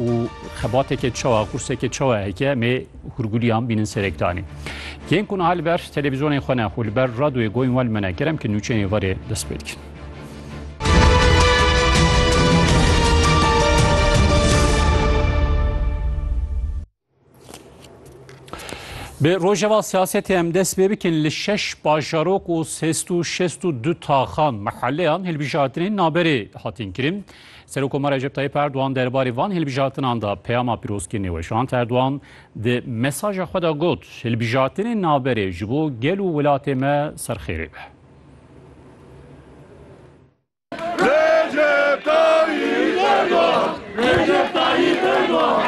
û xebateke çawa qurseke çawa heke mê hurgulîyan bînin serek danî. Yên ku niha li ber televîzyonên xwe ne xwe li ber radoyê goyên we li me ne kerem ki nûçeyên êvarê dest pê dikin. Bi rojeva siyasetê em dest pê bikin li şeş bajarok û sêst û şêst û du taxan mehelleyan hilbijartinên naberê hatin kirin. Serokomara Recep Tayyip Erdogan derbarê van hilbijartinan da peyama pîrozkirî nêweşand. Erdogan di mesaja xwe da got hilbijartinên naberê ji bo gel û welatê me serxêrê be. Recep Tayyip Erdogan! Recep Tayyip Erdogan!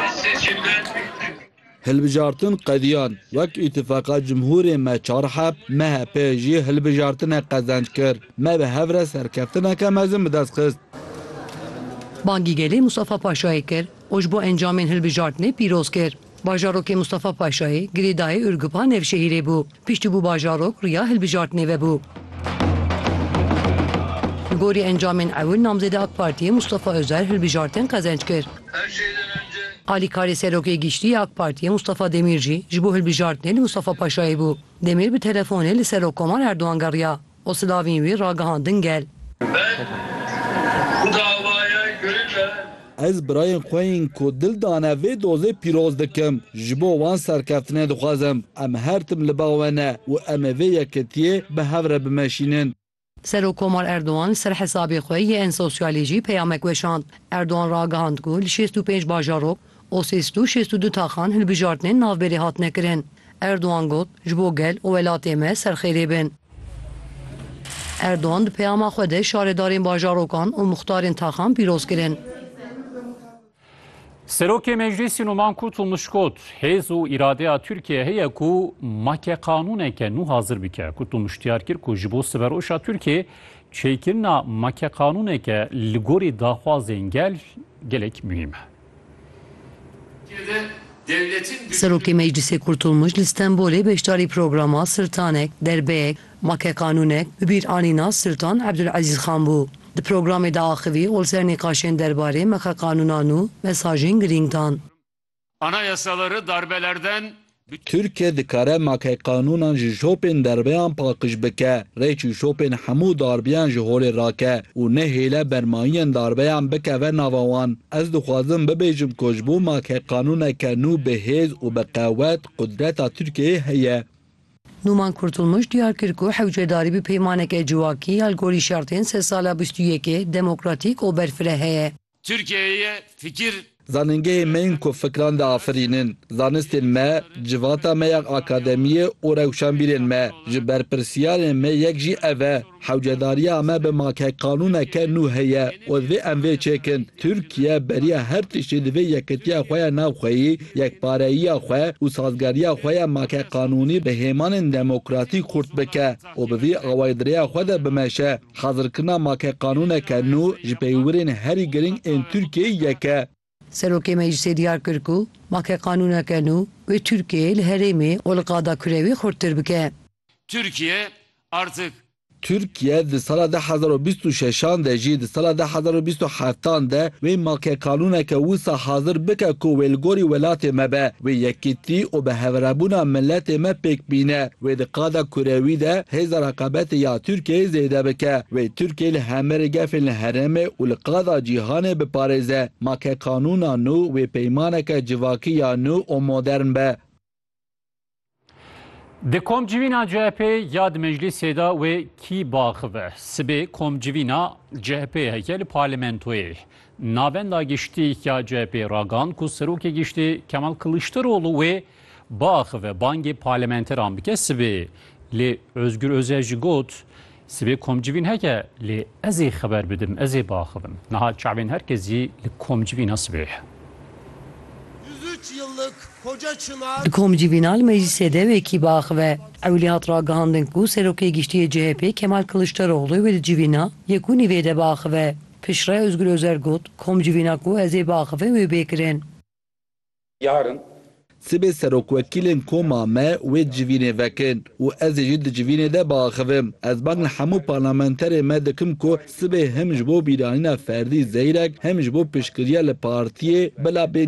Hilbijartin qediyan, wek Îtîfaka Cumhurê me Çarhep, MHP, jî hilbijartinê qezenc kir. Me bi hev re serkeftineke mezin bi dest xist. Bangî gelê Mustafa Paşayê kir û ji bo encamên hilbijartinê pîroz kir. Bajarokê Mustafa Paşayê, girêdayê Ûrgup a Nevşehîrê bû. Piştî bû bajarok, riya hilbijartinê vebû. Li gorî encamên ewil namzêda AK Partiyê Mustafa Ozer hilbijartin qezenç kir. Alîkarê Serokê Giştî yê AK Partiyê Mustafa Demîr jî ji bo hilbijartinê li Mustafa Paşayê bû. Demîr bi telefonê li Serok Komar Erdogan geriya. û silavên wî ragihandin gel. Ez birayên xwe yên ku dil dane vê dozê pîroz dikim. Ji bo wan serkeftinê dixwazim. Em her tim li ba we ne û em ê vê yekitiyê bi hev re bimeşînin. Serokkomar Erdogan li ser hesabê xwe yê en sosyalê jî peyamek weşand. Erdogan ragihand ku li şêst û pênc bajarok, û sês du şêst û du taxan hilbijartinên navberê hatine kirin. Erdogan got, Ji bo gel û welatê me serxêrê bin. Erdogan di peyama xwe de şaredarên bajarokan û muxtarên taxan pîroz kirin. Serokê Meclîsî Numan Kurtulmuş got, Hêz û îradeya Tirkiyeyê heye ku make qanûneke nû hazir bike. Kurtulmuş diyar kir ku ji bo siberoşa Tirkiyeyê çêkirina make qanûneke li gorî daxwazên gel gelek muhîm e. Serokê Meclîsê Kurtulmuş li Stenbolê beşdarî programa Sirtanek, Derbeyek, Make Qanûnek bi bîranîna Sirtan Ebdulezîz Xan bû. Di programê de axivî ol ser nîqaşên derbarê Make Qanûnan û mesajên girîng dan. Anayasaları darbelerden Tirkiye dikare makey qanûnan ji şopên derbeyan paqij bike, rê çi şopên hemû darbiyan ji holê rake û nehêle bermayînên darbeyan bikeve nava wan. Ez dixwazim bibêjim ku ji bo makey qanûneke nû bi hêz û bi qewet qudreta Tirkiyeyê heye. Nûman Kurtulmuş diyar kir ku hewcedarî bi peymaneke civakî ya li gorî şertên sed sala bîst û yekê demokratîk û berfireh heye. Tirkiyeyê fikir. Zanîngehê me yên ku fikran diafirînin, zanistên me, civata me ya akademiyê û rewşenbîrên me. Ji berpirsiyarên me yek jî ev e. Hewcedariya me bi make qanûneke nû heye û divê em vê çêkin. Tirkiye beriya her tiştî divê yekitiya xwe ya navxweyî, yekpareyiya xwe û sazgeriya xwe ya make qanûnî bi hêmanên demokratîk xurt bike û bi vî awayî di rêya xwe de bimeşe. Xazirkirina makeqanûneke nû ji peywirên herî girîng ên Tirkiyeyê yek e. Serokê Meclîsê diyar kir ku makeqanûneke nû wê Tirkiyeyê li herêmê û li qada kurê wê xurttir bike. Tirkiye artik. Tirkiye di sala de hezar û bîst û şeşan de jî di sala de hezar û bîst û heftan de wê makeqanûneke wisa hazir bike ku wê li gorî welatê me be, wê yekîtî û biheverebûna miletê me pêk bîne. Wê di qada kurewî de hêza reqabetê ya Tirkiyeyê zêde bike. Wê Tirkiye li hemerê gefên li herêmê û li qada cîhanê biparêze. Ma ke qanûna nû wê peymaneke civakî ya nû û modern be. Di komcivîna CHP'ê ya di meclîsê de wê kî biaxive? Sibê komcivîna CHP'ê heke li parlamentoyê. Navenda giştî ya CHP'ê ragand ku serokê giştî Kemal Kiliçdaroglu wê biaxive bangê parlementeran bike sibê lê Ozgur Ozel jî got, Sibê komcivîn heke lê ez ê xeber bidim, ez ê biaxivim. Niha çavên her kesî li komcivîna sibê ye. Di komcivîna li meclîsê de wê kî biaxive? Ewilî hat ragihandin ku Serokê Giştî yê CHP'ê Kemal Kiliçdaroglu wê di civîna yek û nîvê de biaxive. Piştre Ozgur Ozel got, Komcivîna ku ez ê biaxivim wê bê kirin. Yarın. Sibê serokwekîlên koma me wê civînê vekin û ez ê jî di civînê de biaxivim. Ez bang li hemû parlamenterê me dikim ku sibê him ji bo bîranîna ferdî Zeyrek him ji bo piştgiriya li partiyê bila bê